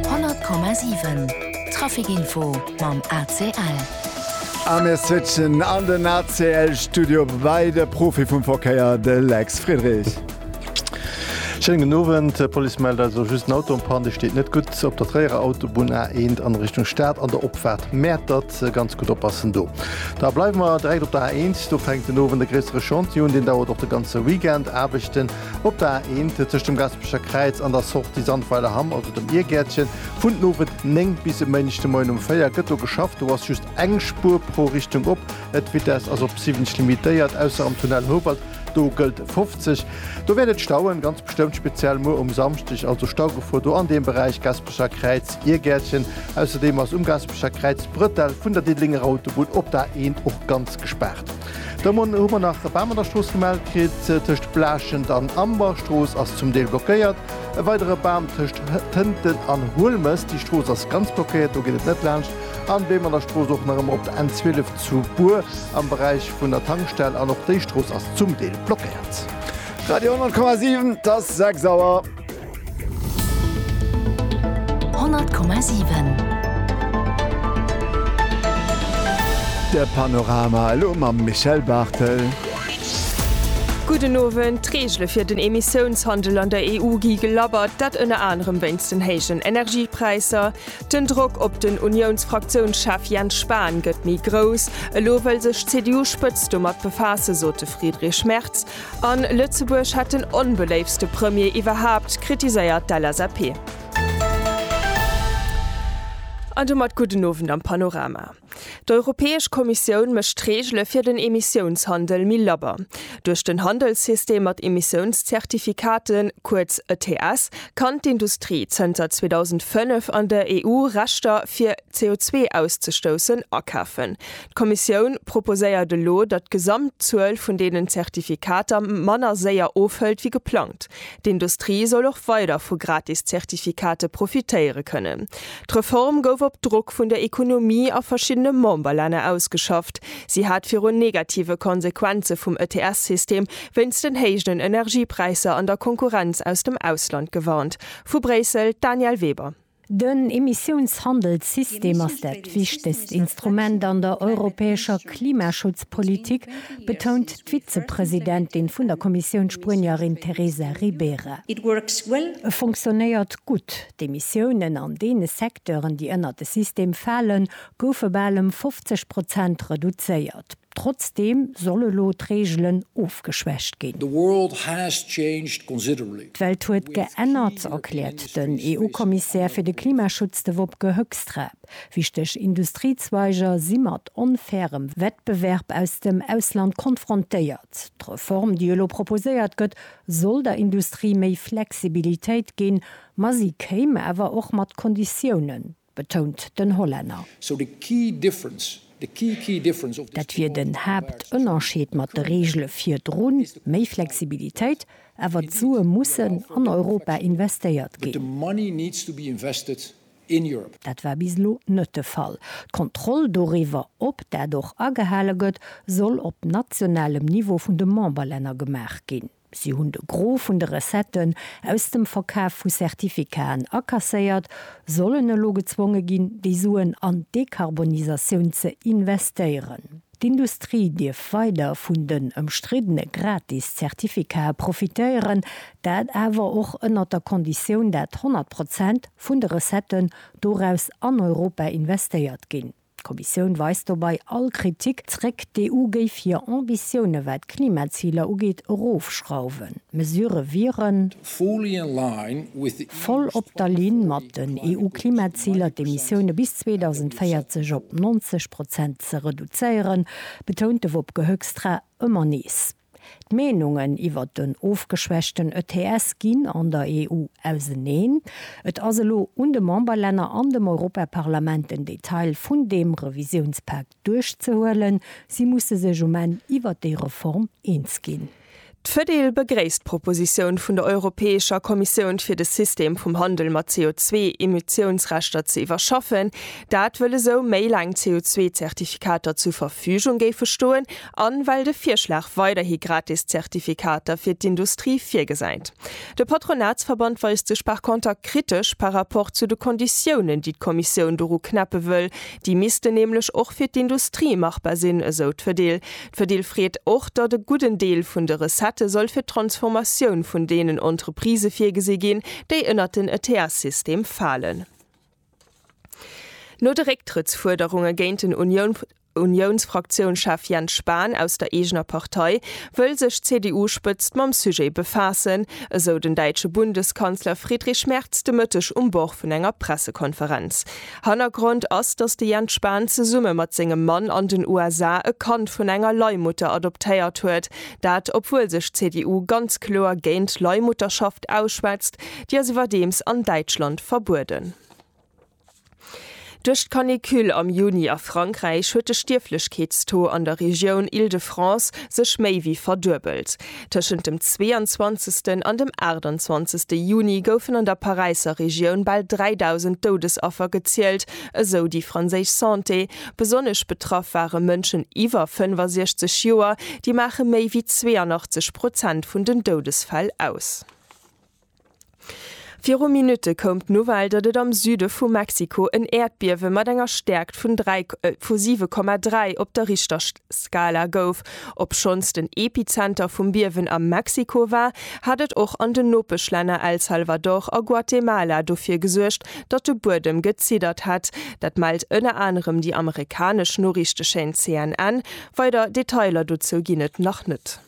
100,7 Traficinfo mam ACL. A mir switchen an den ACL-Studio bei de Profi vum Verkéier, de Lex Friedrich. Schéinen gudden Owend. D'Police mellt eis elo just en Auto en panne. Dee steet net gutt op der Tréierer Autobunn A1 an Richtung Stad an der Opfaart Mäertert. Ganz gutt oppassen do. Da bleiwe mer direkt op der A1. Do fänkt den Owend e gréissere Chantier un. Deen dauert och de ganze Weekend. Aarbechten Op der A1, tëscht dem Gaspecher Kräiz an der Sortie Sandweiler Hamm, also dem Iergäertchen, vun den Owend 9 bis e Méindeg de Moien um 4 gëtt do geschafft. Do ass just eng Spuer pro Richtung op. D'Vitess ass op 70 limitéiert, ausser am Tunnel Houwald, do gëllt 50. Do wäert et stauen, ganz bestëmmt, speziell muer um Samschdeg. Also Staugefor do an deem Beräich Gaspecher Kräiz, Iergäertchen. Ausserdeem ass um Gaspecher Kräiz d'Bretell vun der Diddelenger Autobunn op der A1 och ganz gespaart. De Mon hu mer nach e Bam an der Strooss gemellt kritt. Tëscht Blaaschent an Amber, Strooss ass zum Deel blockéiert. E weidere Bam tëscht Tënten an Huelmes, déi Strooss ass ganz blockéiert, do geet et net laanscht. An Beem an der Strooss och nach ëmmer op der N12 zu Bur am Beräich vun der Tankstell. An och déi Strooss ass zum Deel blockéiert. Radio 100,7, 't ass 6 Auer. De Panorama elo mam Michel Barthel. Gudden Owend. D'Reegele fir den Emissiounshandel an der EU gi gelabbert, dat ënner anerem wéinst den héijen Energiepräisser. Den Drock op den Uniounsfraktiounschef Jens Spahn gëtt méi grouss. Elo wëll sech d'CDU-Spëtzt domat befaassen, sot de Friedrich Merz. A Lëtzebuerg hätt den onbeléiftste Premier iwwerhaapt, kritiséiert d'LSAP. An domat gudden Owend am Panorama. D'Europäesch Kommissioun mécht d'Reegele fir den Emissiounshandel méi labber. Duerch den Handelssystem mat Emissiounszertifikaten, kuerz ETS, kann d'Industrie zënter 2005 an der EU Rechter fir CO2 auszestoussen akafen. D'Kommissioun proposéiert elo, datt d'Gesamtzuel vun deenen Zertifikater manner séier ofhëlt wéi geplangt. D'Industrie soll och weider vu gratis Zertifikate profitéiere kënnen. D'Reform gouf op Drock vun der Ekonomie a verschiddene Memberlänner ausgeschafft. Si hat virun negative Konsequenze vum ETS-System wéinst den héijen Energiepräisser an der Konkurrenz aus dem Ausland gewarnt. Vu Bréissel, d'Danièle Weber. Den Emissiounshandelssystem ass dat wichtegst Instrument an der europäescher Klimaschutzpolitik, betount d'Vizepresidentin vun der Kommissioun, d'Spuenierin Teresa Ribera. E fonctionnéiert gutt. D'Emissiounen an deene Secteuren, déi ënnert de System falen, goufe bal ëm 50 Prozent reduzéiert. Trotzdeem soll elo d'Reegelen ofgeschwächt ginn. The world has changed considerably. D'Welt huet geännert, erkläert den EU-Kommissär fir de Klimaschutz, de Wopke Hoekstra. Wichteg Industriezweiger si mat onfairem Wettbewerb aus dem Ausland konfrontéiert. D'Reform, déi elo proposéiert gëtt, soll der Industrie méi Flexibilitéit ginn, ma si kéim awer och mat Konditiounen. betount den Hollänner. Dat wier den Haaptënnerscheed mat de Reegele virdru, méi Flexibilitéit, awer d'Sue mussen an Europa investéiert ginn. Dat war bis elo net de Fall. D'Kontroll doriwwer, ob dat och agehale gëtt, soll op nationalem Niveau vun de Memberlänner gemaach ginn. Si hunn de Gros vun de Recetten aus dem Verkaf vu Certificaten akasséiert, sollen elo gezwonge ginn, déi Suen an d'Dekarbonisatioun ze investéieren. D'Industrie dierf weider vun den ëmstriddene gratis Certificaten profitéieren, dat awer och ënnert der Konditioun, dat 100 Prozent vun de Recetten doraus an Europa investéiert ginn. D'Kommissioun weist dobei all Kritik zréck, d'EU géif hir Ambitioune wat d'Klimaziler ugeet erofschrauwen. D'Mesurë wieren. Voll op der Linn mat den EU-Klimaziler, d'Emissioune bis 2040 op 90 Prozent ze reduzéieren, betount de Wopke Hoekstra ëmmer nees. D'Meenungen iwwert en ofgeschwächten ETS ginn an der EU auseneen. Et ass elo un de Memberlänner an dem Europaparlament den Detail vun deem Revisiounspak duerchzehuelen. Si musse sech um Enn iwwert déi Reform eens ginn. D'Fedil begréisst d'Propositioun vun der Europäescher Kommissioun fir de System vum Handel mat CO2-Emissiounsrechter ze iwwerschaffen. Dat wëll esou méi laang CO2-Zertifikater zur Verfügung géife stoen an well de Virschlag weiderhi gratis Zertifikater fir d'Industrie virgesäit. De Patronatsverband weist sech par conter kritesch par rapport zu de Konditiounen, déi d'Kommissioun doru knäppe wëll. Déi missten nämlech och fir d'Industrie machbar sinn, esou d'Fedil. D'Fedil freet och, datt e gudden Deel vun de Recettë soll fir d'Transformatioun vun deenen Entreprisë virgesi ginn, déi ënnert den ETS-System falen. No de Récktrëttsfuerderunge géint den Unioun. Uniounsfraktiounschef Jens Spahn aus der eegener Partei wëll sech d'CDU-Spëtzt mam Sujet befaassen, esou den däitsche Bundeskanzler Friedrich Merz de Mëtteg um Bord vun enger Pressekonferenz. Hannergrond ass, datt de Jens Spahn zesumme mat sengem Mann an den USA e Kand vun enger Leihmutter adoptéiert huet. Dat obwuel sech d'CDU ganz kloer géint Leihmutterschaft ausschwätzt, déi ass iwwerdeems an Däitschland verbueden. Duerch d'Canicule am Juni a Frankräich huet de Stierflechkeetstaux an der Regioun Île-de-France sech méi wéi verduebelt. Tëschent dem 22. an dem 28. Juni goufen an der Paräisser Regioun bal 3.000 Doudesaffer gezielt, esou déi franséisch Santé. Besonnesch betraff ware Mënschen iwwer 65 Joer, déi maache méi wéi 82 Prozent vun den Doudesfäll aus. Viru Minutte koum d'Nouvelle, datt et am Süde vu Mexiko en Äerdbiewe mat enger Stäerkt vun 7,3 op der Richterskala gouf. Obschonns den Epizenter vum Biewen a Mexiko war, hat et och an den Nopeschlänner El Salvador a Guatemala dofir gesuergt, datt de Buedem geziddert hätt. Dat mellt ënner anerem déi amerikanesch Noriichtechaan CNN. Weider Detailer dozou ginn et nach net.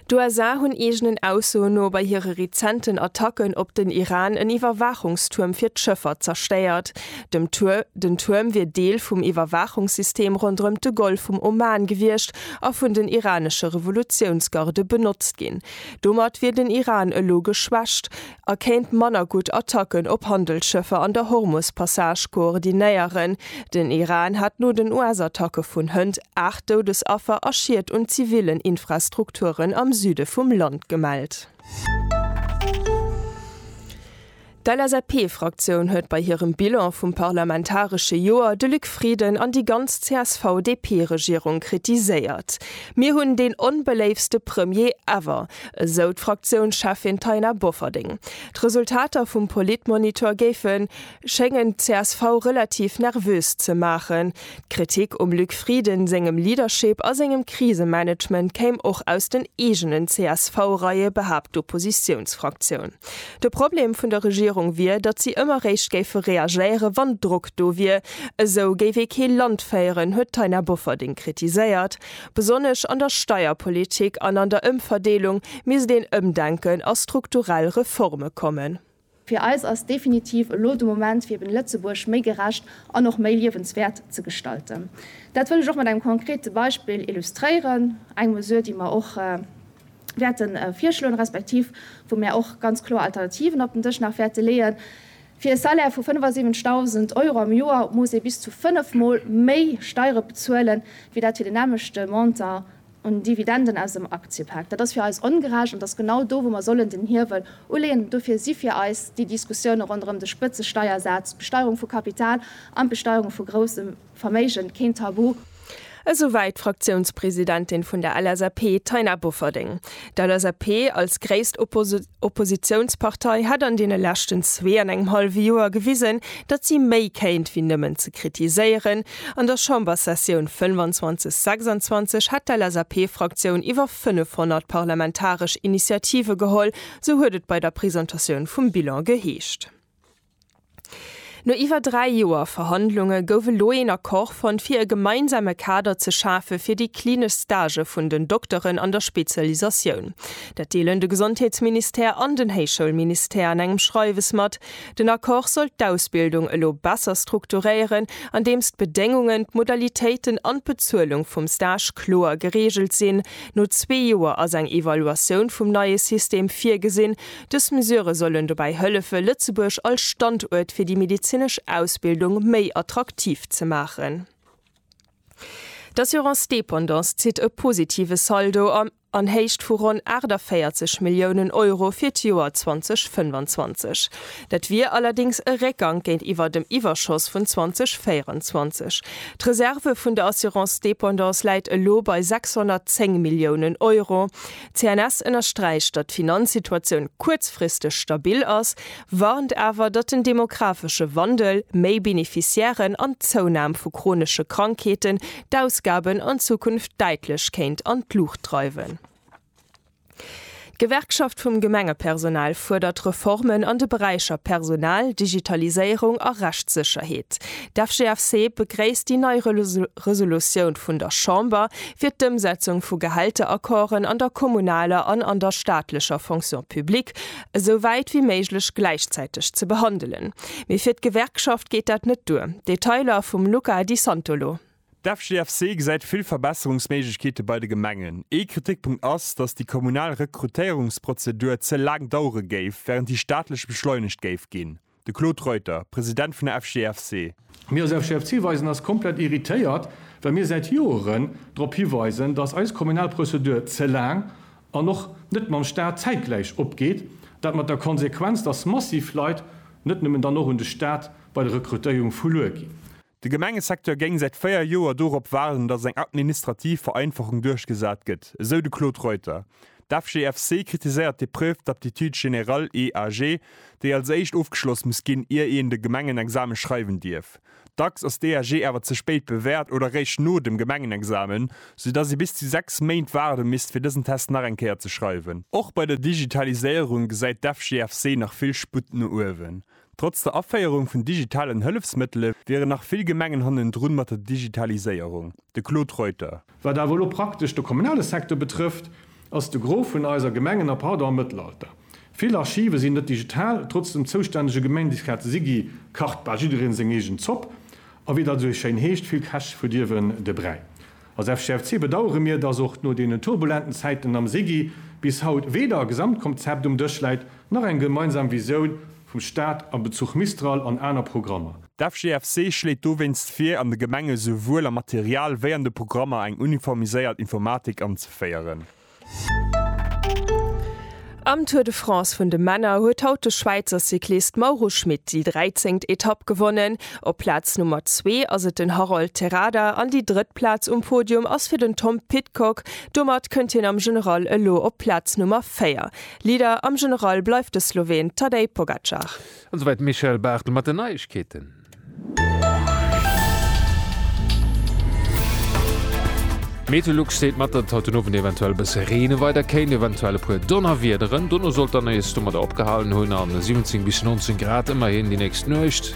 D'USA hunn eegenen Aussoen no bei hire rezenten Attacken op den Iran en Iwwerwaachungstuerm fir d'Schëffer zerstéiert. Den Tuerm wier Deel vum Iwwerwaachungssystem ronderëm de Golf vum Oman gewiescht a vun den iranesche Revolutiounsgarde benotzt ginn. Domat wier den Iran elo geschwächt. a kéint manner gutt Attacken op Handelsschëffer an der Hormus-Passage koordinéieren. Den Iran hat no den US-Attacke vun hënt 8 Doudesaffer a Schied un zivillen Infrastrukturen am Süde vum Land gemellt. D'LSAP-Fraktioun huet bei hirem Bilan vum parlamentaresche Joer de Luc Frieden an déi ganz CSV-DP-Regierung kritiséiert. Mir hunn deen onbeléiftste Premier ever. esou d'Fraktiounscheffin Taina Bofferding. D'Resultater vum Politmonitor géife schéngen d'CSV relativ nervös ze maachen. D'Kritik um Luc Frieden sengem Leadership a sengem Krisemanagement kéim och aus den eegenen CSV-Reie, behaapt d'Oppositiounsfraktioun. De Problem vun der Regierung wier, datt si ëmmer réischt géife reagéieren, wann Drock do wier. Esou géif ee kee Land féieren, huet d'Taina Bofferding kritiséiert. Besonnesch an der Steierpolitik an an der Ëmverdeelung misst een Ëmdenken a strukturell Reforme kommen. Fir eis ass definitiv elo de Moment, fir eben Lëtzebuerg méi gerecht an och méi liewenswäert ze gestalten. Dat wëll ech och mat engem konkrete Beispill illustréieren, eng Mesure, déi mer och, wäerte virschloen, respektiv wou mär och ganz kloer Alternativen op den Dësch nach wäerte leeën, Fir e Salaire vu 75.000 Euro am Joer muss ee bis zu fënnef Mol méi Steiere bezuelen, wéi dat fir den nämmlechte Montant un Dividenden aus dem Aktiepak. Dat ass fir eis ongerecht an dat ass genau do, wou mer sollen den Hiewel uleeën. Dofir si fir eis déi Diskussioune ronderëm de Spëtzesteiersaz, d'Besteierung vu Kapital an d'Besteierung vu groussem, Verméigen, keen Tabu! Esouwäit d'Fraktiounspresidentin vun der LSAP, Taina Bofferding. D'LSAP als gréisst Oppositiounspartei hätt an deene leschten zwee an engem hallwe Joer gewisen, datt si méi kéint wéi nëmmen ze kritiséieren. An der Chamberssessioun 25, 26 hätt d'LSAP-Fraktioun iwwer 500 parlamentaresch Initiative geholl, sou huet et bei der Presentatioun vum Bilan geheescht. No iwwer dräi Joer Verhandlunge gouf elo een Accord fonnt, fir e gemeinsame Kader ze schafe fir déi klinesch Stagë vun den Dokteren an der Spezialisatioun. Dat deelen de Gesondheetsministère an den Héichschoulministère an engem Schreiwes mat. Den Accord soll d'Ausbildung elo besser strukturéieren, andeems d'Bedéngungen, d'Modalitéiten an d'Bezuelung vum Stage kloer gereegelt sinn. No zwee Joer ass eng Evaluatioun vum neie System virgesinn. Dës Mesure sollen dobäi hëllefe Lëtzebuerg als Standuert fir déi medezinesch Ausbildung méi attraktiv ze maachen. D'Assurance Dépendance zitt e positive Saldo an Héicht vu ronn 48 Milliounen Euro fir d'Joer 2025. Dat wier allerdéngs e Réckgank géintiwwer dem Iwwerschoss vun 2024. D'Reserve vun der Assurance Dépendance läit elo bei 610 Milliounen Euro. D'CNS ënnersträicht, datt d'Finanzsituatioun kuerzfristeg stabil ass, warnt awer, datt den demographesche Wandel, méi Beneficiairen an d'Zounam vu chronesche Krankheeten d'Ausgaben an Zukunft däitlech kéint an d'Luucht dreiwen. D'Gewerkschaft vum Gemengepersonal fuerdert Reformen an de Beräicher Personal, Digitaliséierung a Rechtssécherheet. D'FGFC begréisst déi nei Resolutioun vun der Chamber fir d'Ëmsetzung vu Gehälteraccorden an der kommunaler an an der staatlecher Fonction publique esou wäit wéi méiglech gläichzäiteg ze behandelen. Mee fir d'Gewerkschaft geet dat net duer. Detailer vum Luca Di Santolo. D'FGFC gesäit vill Verbesserungsméiglechkeete bei de Gemengen. Ee Kritikpunkt ass, datt déi kommunal Rekrutéierungsprozedur ze laang dauere géif, wärend déi staatlech beschleunegt géif ginn. De Claude Reuter, President vun der FGFC. Mir als FGFC weisen eis komplett irritéiert, well mir säit Joeren drop hiweisen, datt eis kommunal Prozedur ze laang an och net mam Staat zäitgläich opgeet. Dat mat der Konsequenz, datt massiv Leit, net nëmmen dann och un de Staat, bei der Rekrutéierung verluer ginn. De Gemengesecteur géing säit 4 Joer dorop waarden, datt eng administrativ Vereinfachung duerchgesat gëtt, esou de Claude Reuter. D'FGFC kritiséiert d'Épreuve d'aptitude générale, EAG, déi als éischt ofgeschloss muss ginn, ier een de Gemengenexame schreiwen dierf. Dacks ass d'EAG awer ze spéit bewäert oder réischt no dem Gemengenexamen, sou datt ee bis zu 6 Méint waarde misst, fir dësen Test nach eng Kéier ze schreiwen. Och bei der Digitaliséierung gesäit d'FGFC nach vill Sputt no uewen. Trotz der Aféierung vun digitalen Hëllefsmëttele wieren nach vill Gemengen hannendrun mat der Digitaliséierung. De Claude Reuter. Wat awer elo praktesch de kommunale Secteur betrëfft, ass de Gros vun eiser Gemengen nach haut am Mëttelalter. Vill Archive sinn net digital, trotz dem zoustännege Gemeindisrat Sigi kacht bal jiddereen seng eegen Zopp a wéi dat esou schéin heescht, vill Käch verdierwen de Bräi. Als FGFC bedauere mir, dass och no deenen turbulenten Zäiten am SIGI bis haut weder e Gesamtkomzept um Dësch läit, nach eng gemeinsam Visioun vum Staat a Bezuch Mistral an aner Programmer. D'FGFC schléit dowéinst vir, an de Gemenge souwuel am Material wéi an de Programmer eng uniformiséiert Informatik anzeféieren. Am Tour de France vun de Männer huet haut de Schwäizer Cyclist Mauro Schmit déi 13. Etapp gewonnen. Op Plaz Nummer zwee ass et den Harold Terrada an déi drëtt Plaz um Podium ass fir den Tom Pidcock. Domat kënnt hien am General elo op Plaz Nummer véier. Leader am General bleift de Sloween Tadej Pogacar. An esouwäit d'Michèle Barthel mat den Neiegkeeten. Meteolux seet mat, datt et haut den Owend eventuell e bësse reene weider kéint, eventuell e puer Donnerwiederen. Dono soll et dann nees domadder opgehalen hunn a 17 bis 19 Grad ëmmerhin déi nächst Nuecht.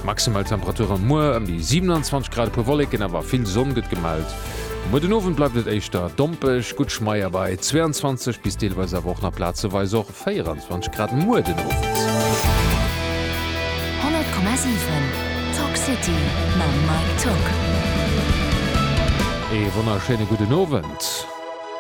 Maximal Temperature muer ëm déi 27 Grad, e puer Wolleken, awer vill Sonn gëtt gemellt. Muer den Owend bleift et éischter dompeg, gutt Schmeier bei 22 bis deelweis awer och nach plazeweis och. 24 Grad muer den Owend. 100,7 Talk City mam Mike Togg. Ee wonnerschéine gudden Owend.